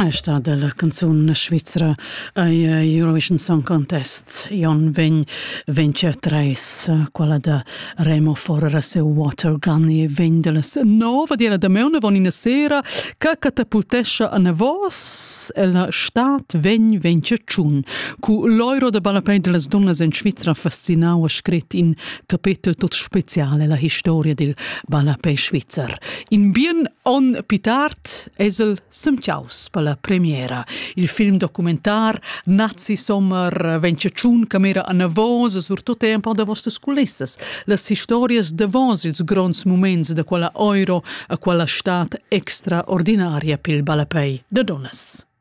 Ei stat della canzun svizra ei Eurovision Song Contest. Jon vegn vence treis, quella da Remo Forrer seu Water Gun e vegn della nova della da meuna von ina sera che catapultescha a vos e la stat vegn vence tschun. Cu l'euro de ballapei dellas dunnas in Svizra fascinau a scrit in capetel tot special ella historia dil ballapè svizzer. In bien on pitart es el semtiaus per la premiera. Il film documentar Nazi Sommer ventschun camera a Navos surtut è un po' da vostras culissas. Las historias davos ils gronds moments da quella euro a quella stat extraordinaria pel ballapè da donas.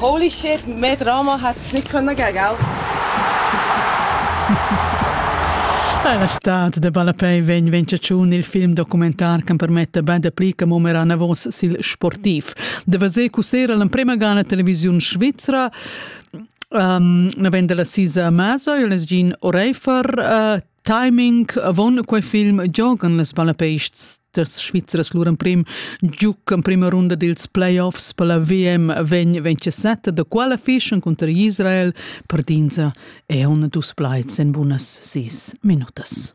Holy shit, mehr Drama hätte nicht können geben gell? La stad de Ballapei vegn vegn tschun il film documentar che permetta ben dapli che mo mera navos sil sportiv. De vaser cusera l'emprema gana televisiun svizra um, vende la sisa Maso, il es gin Oreifer uh, Timing avon quei film giogan las Balapeists das Schweizers lur emprim giuc en prima runda dils playoffs per la VM 2027, da quella fischen conter Israel per dinsa e un dus plaids en bunas sis minutas.